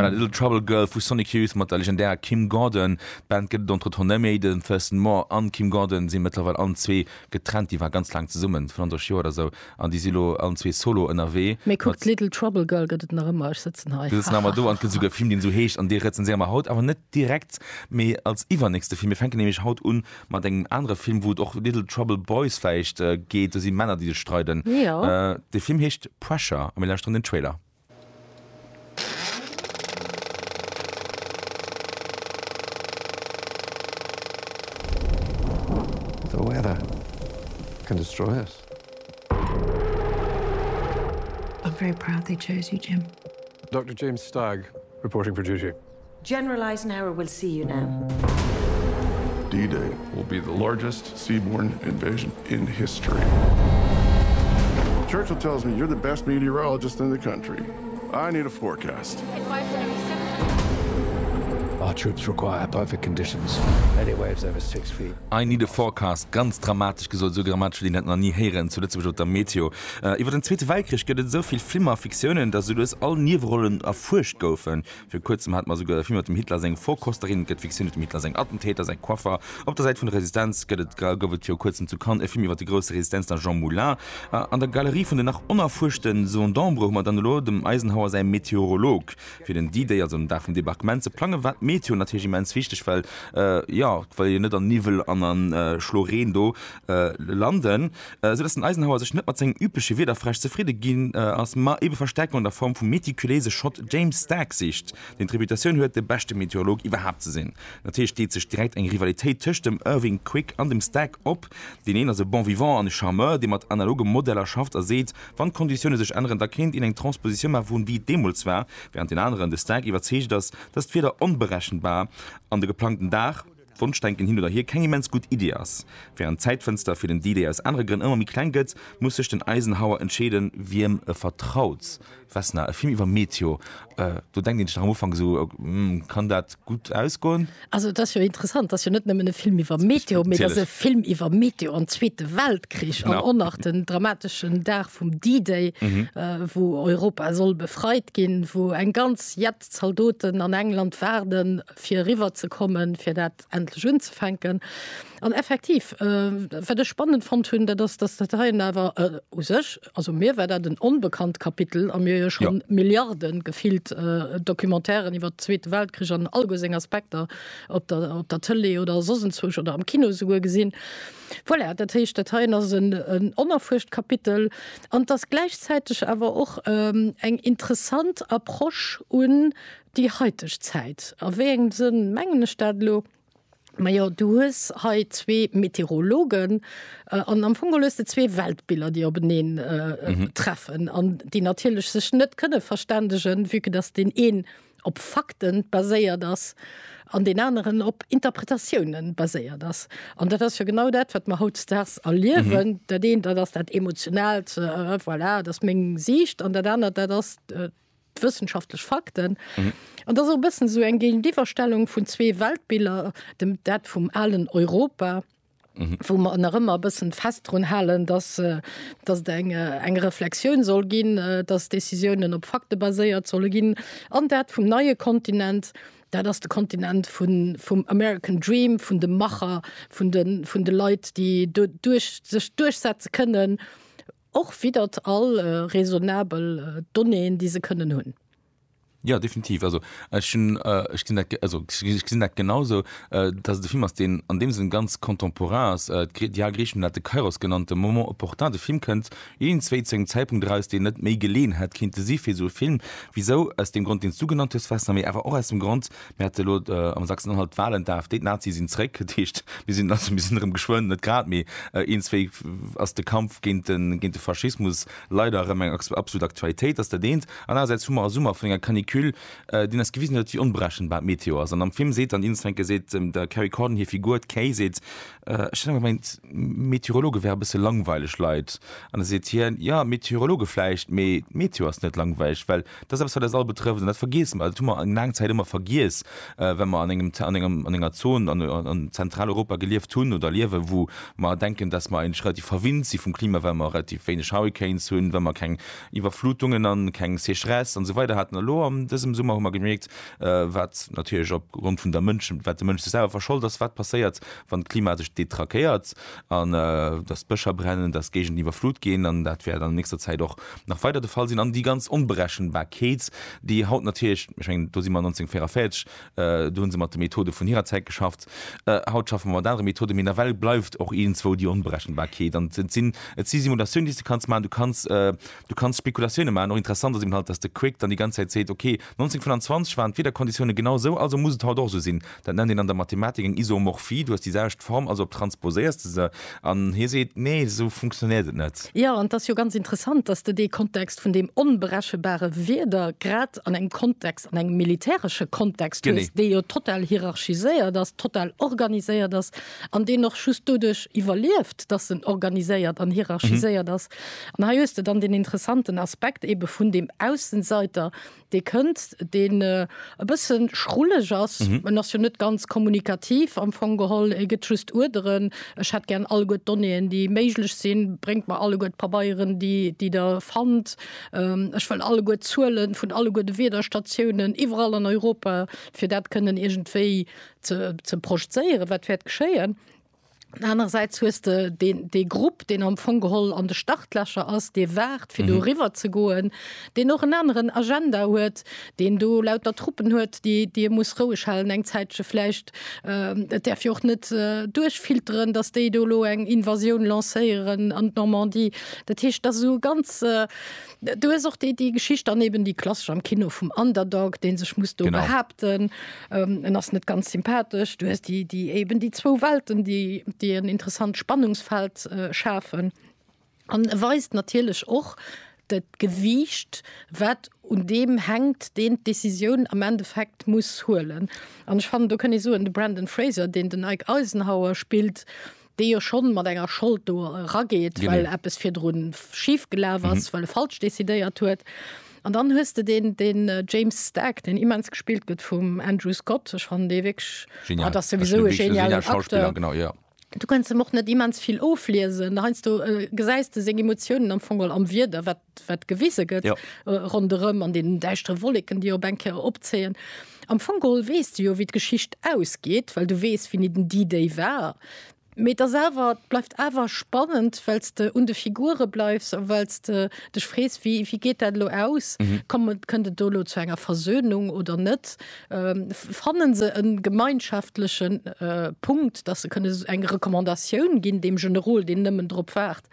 war dat Little Trouble Girl vu Sonic Youth mat der legendärer Kim Gordon. D'Band gëtt et entretemps net méi. Den Thurston Moore an d'Kim Gordon sinn mëttlerweil allen zwee getrennt. Déi waren ganz laang zesummen, 35 Joer oder sou, an déi si lo allen zwee solo ënnerwee. Mee kuckt, d'Little Trouble Girl gëtt et nach ëmmer, ech sëtzen hei. Mir sëtzen awer do an et gëtt esouguer e Film deen esou heescht an dee rezenséiere mer haut awer net direkt mee als iwwernächste Film. Mir fänken nämlech haut un Mat engem anere Film, wou et och Little Trouble Boys vläicht geet, do si Männer, déi sech streiden. De Film heescht Pressure a mir lauschteren den Trailer. The weather can destroy us. I'm very proud they chose you, Jim. Doctor James Stagg reporting for duty. General Eisenhower will see you now. D-Day will be the largest seaborne invasion in history. Churchill tells me you're the best meteorologist in the country. I need a forecast. Our troops require perfect conditions. Any waves over six feet. I need a forecast, ganz dramatesch gesot, esou dramatesch wéi een dat nach ni héieren zu Lëtzebuerg op der Meteo. Iwwer den Zweete Weltkrich gëtt et esou vill Filmer a Fiktioune, datt esou lues all Niewerollen erfuerscht goufen. Vir kuerzem hate mer esouguer e Film mat dem Hitler, seng Vorkosterin gëtt Fiktioun iwwer dem Hitler, säin Attentäter, säi Coiffer. Op der Säit vun der Resistenz gëtt et, gouf et viru kuerzem zu Cannes e Film iwwer de grousse Resistenzler Jean Moulin. A an der Galerie vun den nach onerfuerschte Zone d'Ombre hu mer dann elo dem Eisenhower säi Meteorolog. Fir den D-Day, also den Dag vum Debarquement, ze plangen, war d'Meteo natierlech immens wichteg, well, jo, well jo net an Niwwel an a Schlo Reen do, landen, esou dass den Eisenhower sech net mat sengem übleche Wiederfräsch zefridde ginn ass, ma ebe Verstäerkung an der Form vum meticuléise Schott James Stark sicht, deen d'Reputatioun huet, de beschte Meteorolog iwwerhaapt ze sinn. Natierlech deet sech direkt eng Rivalitéit tëscht dem Irving Quick an dem Stark op. Deen een ass e Bon vivant an e Charmeur, dee mat analoge Modeller schafft a seet, wann d'Konditioune sech änneren, da kéint een eng Transpositioun maache vun wéi et deemools war, wärend deen aneren, de Stark, iwwerzeegt ass, dass d'Wieder onberechenbar an de geplangten Dag, Wonschdenken hin oder hier keng immens gutt Iddi ass. Wärend d'Zäitfënster fir den D-Day aus anere Grënn ëmmer méi kleng gëtt, muss sech den Eisenhower entscheeden, wiem e vertraut. Vesna, e Film iwwer Meteor, do denkt ee sech nach am Ufank esou, Hm, kann dat gutt ausgoen? Also et ass jo interessant, et ass jo net nëmmen e Film iwwer Meteor, mee et ass e Film iwwer Meteor an Zweete Weltkrich an och nach den dramateschen Dag vum D-Day, wou Europa soll befreit ginn, wou eng ganz Jett Zaldoten an England waarden. fir eriwwer ze kommen, fir dat endlech unzefänken. An effektiv äh, wat ech spannend fonnt hunn, dat ass dass dat heien awer äh, u sech also mir war dat en onbekannt Kapitel a mir jo schon ja. Milliarden gefilt äh, Documentairen iwwer den Zweete Weltkrich an all go seng Aspekter op der, op der Tëlee oder sosenzwuch oder am Kino souguer gesinn. Voilà, dat heescht dat heien ass en, en onerfuerscht Kapitel an dass gläichzäiteg awer och ähm, eng interessant Approche un Déi heiteg Zäit, a wéi engem Sënn mengen ech dat elo? Majo, du hues hei zwee Meteorologen an am Fong geholl hues de zwee Weltbiller, déi openeen treffen an déi natierlech sech net kënne verständegen, vue que dass deen een op Fakte baséiert ass an deen aneren op Interpretatioune baséiert ass. An dat ass jo genau dat, wat mer hautdesdaags erliewen. Dat eent, dat ass dat Emotionaalt, voilà, dat ass meng Siicht an dat anert, dat ass. d'wëssenschaftlech Fakten. An dat ass och e bëssen esou eng Géintiwwerstellung vun zwee Weltbiller, dem dat vum alen Europa, wou mer nach ëmmer e bëssen fest drun halen, dass dass et eng eng Reflexioun soll ginn, dass Décisiounen op Fakte baséiert solle ginn, an dat vum neie Kontinent, dat ass de Kontinent vun vum American Dream, vun de Macher, vun de vun de Leit, déi do duerch sech duerchsetze kënnen, Och widdert all raisonnabel Donnéeën, déi se kënnen hunn. Ja, definitiv. Also, ech, hun, äh, ech, dat, also, ech gesinn dat genauso, äh, dass et e Film ass, deen an deem Sënn ganz contemporain ass. Äh, D'Diane Griesschmann hat de Kairos genannt, de Moment opportun. De Film kënnt iergendzwéi zu engem Zäitpunkt eraus, deen net méi geleeën hätt kinnte si fir esou e Film. Wisou? Aus deem Grond, deen s du genannt hues, Westner, mee awer och aus dem Grond, Mir hate lo am Sachsen-Anhalt d'Wahlen, d'AfD, d'Nazien sinn zréck. Dat heescht, mir sinn also, mir sinn erëm geschwënn, net grad, mee een, zwéi ass de Kampf géint de, géint de Faschismus leider erëm eng absolut Aktualitéit. Dat ass dat eent. An anerersäits hu mer e Summer vun enger Canicule, deen eis gewisen huet, wéi onberechenbar d'Meteo ass. An am Film seet dann Insfenke, seet dem der Kerry Condon hir Figur, d'Kay, seet, Ech hunn ëmmer mengt, Meteorologe wäre e bësse langweileg Leit. An da seet hien, Jo, Meteorologe vläicht, mee d'Meteo ass net langweileg, well Dat ass eppes, wat eis all betrëfft, an dat vergiessen mer. Dat hu mer eng laang Zäit ëmmer vergiess, well mer an engem, an engem, an enger Zon an, an Zentraleuropa gelieft hunn oder liewen, wou mer denken, dass mer eigentlech relativ verwinnt si vum Klima, well mer relativ wéineg Hurricanes hunn, well mer keng Iwwerflutungen an keng Sécheresse an esou weider haten. A lo an dësem Summer hu mer gemierkt, wat natierlech op Grond vun der Mënschen, wat de Mënsch sech selwer verschollt ass, wat passéiert, wann d'Klima sech detraquéiert. an dass d'Bëscher brennen, dass Géigenden iwwerflut ginn, an dat wäert an nächster Zäit och nach weider de Fall sinn, an déi ganz Onberechenbarkeet, déi haut natierlech, ech mengen, do si mer 1944, do hu se mat de Methode vun hirer Zäit geschafft, haut schaffe mer mat anere Methoden, mee nawell bleift och iergendzwou déi Onberechenbarkeet. An et sinn, et si Simulatioune, déi s de kanns maachen, du kanns, du kanns Spekulatioune maachen. Och interessant ass eben halt, dass de Quick dann déi ganz Zäit seet, ok, 1925 waren d'Wiederkonditioune genau esou, also muss et haut och esou sinn, Dat nennt een an der Mathematik eng Isomorphie, du hues déi selwecht Form, also transposéiers de se. An hie seet, Nee, esou funktionéiert et net. Jo, an et ass jo ganz interessant, datt de dee Kontext vun deem onberechenbare Wieder grad an engem Kontext, an engem militäresche Kontext hues, dee jo total hierarchiséiert ass, total organiséiert ass an deen och just doduerch iwwerlieft, datt en organiséiert an hierarchiséiert ass. An hei hues de dann deen interessanten Aspekt eebe vun deem Aussenseiter, dee kënnt, deen e bësse schrulleg ass, en ass jo net ganz kommunikativ am Fong geholl, e gëtt just Uerderen, ech hätt gären alleguer d'Donnéeën, déi méiglech sinn, bréngt mer alleguer d'Pabeieren, déi déi Der fannt, ech wëll alleguer d'Zuele vun alleguer de Wiederstatiounen iwwerall an Europa, fir dat kënnen iergendwéi ze ze projzéieren, wat wäert geschéien. Anerersäits hues de den, dee Grupp, deen am Fong geholl an de Startlächer ass, dee waart, fir do eriwwer ze goen, deen och en aneren Agenda huet, deen do lauter Truppen huet, déi dee muss roueg halen eng Zäitche vläicht. Et däerf jo och net duerchfilteren, datt déi do elo eng Invasioun lancéieren an d'Normandie. Dat heescht, dat ass esou e ganz, Du hues och déi déi Geschicht an eben déi klassesch am Kino vum Underdog, deen sech muss do genau. behaupten, ähm, en ass net ganz sympathesch. Du hues déi déi eben déi zwou Welten, déi déi en interessant Spannungsfeld äh, schafen. An e weist natierlech och dat Gewiicht, wat un deem hänkt, deen d'Decisioun am Endeffekt muss huelen. An ech fannen, do kënn ee soen, de Brendan Fraser, deen den Ike Eisenhower spillt, dee jo schonn mat enger Schold do erageet, well Genee. eppes virdrun schif gelaf ass, well e falsch decidéiert huet. An dann hues de deen, deen James Stagg, deen immens gespillt gëtt vum Andrew Scott. Ech fannen dee wierklech, Genial. ah, dat ass Ech souwisou e wierklech e genialen geniale Schauspiller, Acteur. genau, jo. Du kënns em och net immens vill ofliesen. Heiansdo gesäis de seng Emotiounen am Fong am Wieder, wat wat gewise gëtt ronderëm an deenen däischtere Wolleken, déi op eng Kéier opzéien. Am Fong geholl weess de jo, wéi d'Geschicht ausgeet, well du weess, wéini den D-Day war. Mee et ass awer, et bleift awer spannend, well s de un de Figure bleifs a well s de dech frees, wéi, wéi geet dat elo aus? Komm, kënnt et do elo zu enger Versönung oder net? Fanne se e gemeinschaftleche Punkt, dass se kënne eng Recommandatioun ginn deem Generol, deen nëmmen drop waart,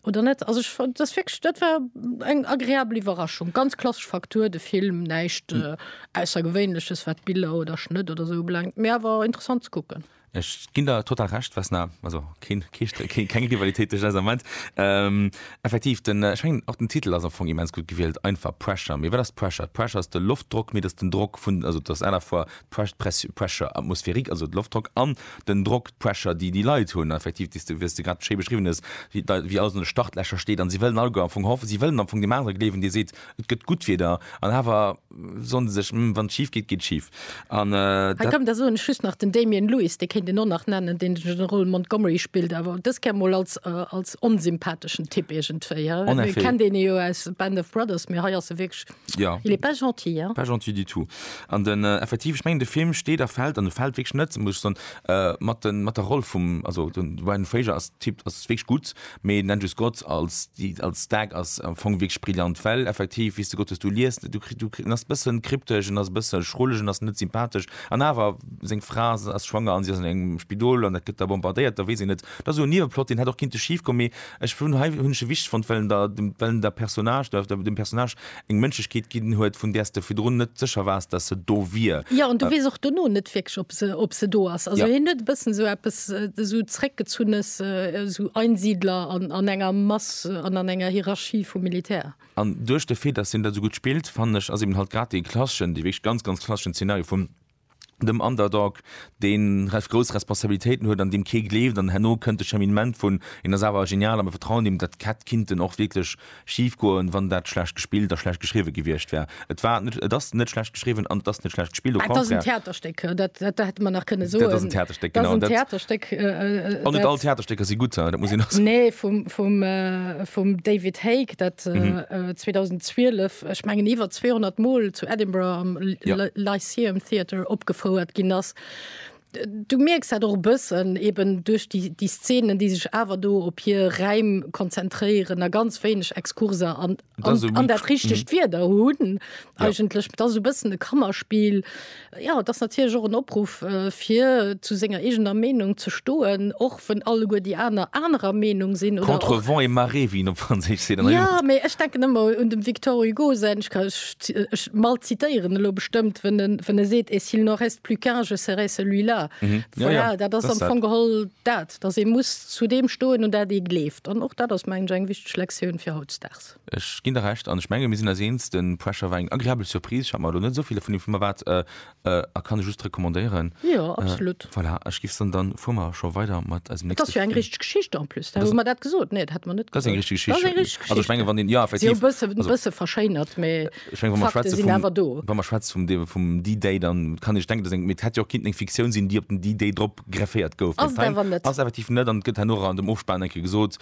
oder net also ich, das wirklich, dat war eng agréabel Iwwerraschung ganz klassesch Faktur de Film näicht hm. äh, aussergewéinleches wat Biller oder Schnëtt oder so blankt Mä war interessant zu gucken. Ech ginn der total recht was na also keng Rivalitéit meint ähm, effektiv den äh, schwingen auch den Titel also vung immens gut gewielt einfach pressure mir das pressure pressure ist der Luftdruck mir das den Druck vun also das einer vor Pressure, atmosphérique, also de Loftdrock, an den Drock, d'Pressure, déi déi Leit hunn, effektiv, déi s de, wéi s de grad schéi beschriwwen hues, wéi da, wéi alles an de Startlächer steet an si wëllen alleguer am Fong hoffen, si wëllen am Fong deem anere gleewen, dee seet, et gëtt gutt Wieder, an awer soen se sech, Hm, wann et schif geet, geet et schif. An Hei dat. kommen, da soen ech just nach, den Damian Lewis, dee kéint een och nach nennen, deen de Generol Montgomery spillt, awer dës Kéier mol als, als onsympatheschen Typ iergendwéi, he? En effet. Kennt een e jo aus Band of Brothers, mee hei ass e wierklech. Ja. Il est pas gentil, hein? Pas gentil du tout. An den äh, effektiv, ich mengen, de Film steht a fällt an de fällt wirklich net muss ich son, äh, mat, den, mat der Roll vum also den Ryan Fraser als Typ ass wirklich gut, mee den Andrew Scott als, die, als Stag ass am Fong wirklich brillant, well effektiv wis de Gott dass du liest du, du, du ass bëssen kryptesch en ass bëssen schrulleg en ass net sympathesch an awer seng Fra ass schwanger an si ass an engem Spidol an dat gëtt da bombardéiert da weess een net, dat ass esou en Nieweplot deen hätt och kinnte schief goen, mee Ech vun hei hunn ech e wichteg fonnt, well en der, well en der Personnage, der, der, dem Personnage eng Mënschlechkeet ginn huet, vun där s de virdrun net sécher waars, dass se do wier. Jo, an du weess och dono net wierklech, ob se, ob se do ass. Also Ja. hien huet e bëssen esou eppes, esou Zréckgezunnes, esou Einsiedler an, an enger Mass an an enger Hierarchie vum Militär. An duerch de Fait, dass hien dat esou gutt spillt, fannen ech, ass eben halt grad dee klasseschen, dee wierklech ganz, ganz klasseschen Zeenario vum, dem Underdog, dee ref grouss Responsabilitéiten huet, an deem kee gleeft, an herno kënnt de Cheminement vun, en ass awer genial a mir vertrauen him, dat hätt kinnten och wierklech schif goen, wann dat schlecht gespillt a schlecht geschriwwe gewiescht wär. Et war net, et ass net schlecht geschriwwen an et ass net schlecht gespillt, au contraire. Dat ass en Theaterstéck, dat hätte mer nach kënne soen. Dat ass en Theaterstéck, genau. Dat ass en Theaterstéck, dat. An net all Theaterstécker si gutt, dat muss een och soen. Nee, vum, vum, vum David Haig, dat 2012, ech mengen iwwer 200 Mol zu Edinburgh am Lyceum Theatre opgefouert ginn ass. Du mierks dat och e bëssen eben duerch déi, déi Szenen, déi sech awer do op hir Räim konzentréieren a ganz wéineg Exkurser an, an, an dat richtegt Wieder hunn eigentlech. Ja. Et ass e bëssen e Kannerspill. Jo, et ass natierlech och en Opruff, fir zu senger eegener Meenung ze stoen, och wann alleguer déi aner anerer Meenung sinn oder och. Contre vent et marée, wéi een op Franséisch seet. Ja, mee ech denken ëmmer un dem Victor Hugo säin, ech ka, ech ech mal zitéieren elo bestëmmt, wën en, wën e seet, et s'il n'en reste plus qu'un, je serai celui-là. Mhm. Ja, Voilà, ja, dat ass dat am ass dat. Fong geholl dat, dass ee muss zu deem stoen, un dat ee gleeft. An och dat ass, mengen ech, eng wichteg Lektioun fir hautdesdaags. Ech ginn der Recht. An ech menge mir sinn eis eens, de Pressure war eng agreabel Surprise. Ech hat mer elo net esou vill dovun erwaart. Äh, kann ech just recommandéieren. Jo, absolut. Äh, voilà, ech gif dann, dann fuhr mer scho weider mat eisem nächsten. Das ist ja eng richtig Geschichte en plus. Da hu mer dat gesot. Nee, dat hat mer net gesot. Das ist eng richtig Geschichte. Das ist eng richtig Geschichte. Also ich menge wann den ja effektiv. Sie bësse also, bësse verschéinert, mais äh, ich mein, Fakte schwätze sind awer do. Wann mer schwätze vum de, vum D-Day, dann kann ich denken, dass eng mit hätte jo kind eng Fiktion sinn, die op den D-Day drop grefféiert gouf. Ass awer net. Ass effektiv net an gëtt herno an dem Ofspann enke gesot,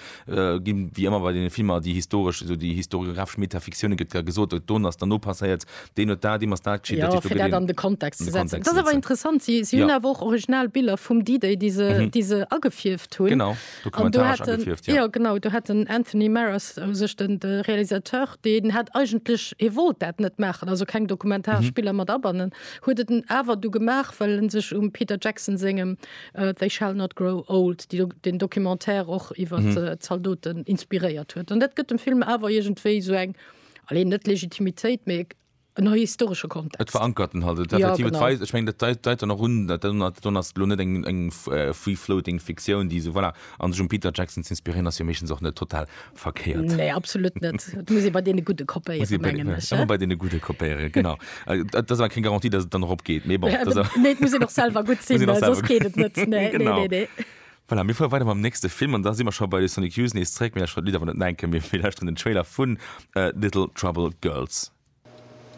Ginn wéi ëmmer bei deene Filmer, déi historesch, esou déi historiographesch Metafiktioune gëtt da gesot, et don ass, dann no passéiert, deen huet dat, deem ass dat geschitt, dat Jo, fir dat an de Kontext ze setzen. Dat ass awer interessant, si si hunn awer och original Biller vum D-Day, déi se, déi se agefierft hunn. Genau, dokumentaresch agefierft, jo. Jo, genau, do hat den Anthony Maras u sech, de Realisateur, deen hat eigentlech, hie wollt dat net maachen, also keng dokumentaresch Biller mat abannen, huet et awer du gemaach, well e sech um Peter Jackson sengem They shall not grow old, déi den Documentaire och iwwer mm -hmm. Zaldoten inspiréiert huet. An dat gëtt dem Film awer iergendwéi sou eng alle net Legitimitéit mé en historsche Kontext. Et verankerten halt ja, ich mein, deit an run ass lo net eng eng äh, free floating Fiktioun, déi se voilà, an sech um Peter Jackson ze inspirieren, ass jo méchens och net total verkehrt nee, absolut net muss bei den gute kopéieren genau das war keine Garantie dass dann op geht nee, bon, ja, das nee, muss noch selber gut sehen, selber gut. Geht net nee, genau. nee, nee, nee. Voilà, mir fuer weiter mam nächste Film an da si mer scho bei de Sonic Youth nees zréck, mir schon Lider wann net enke mir villäicht den Trailer vun uh, Little Trouble Girls.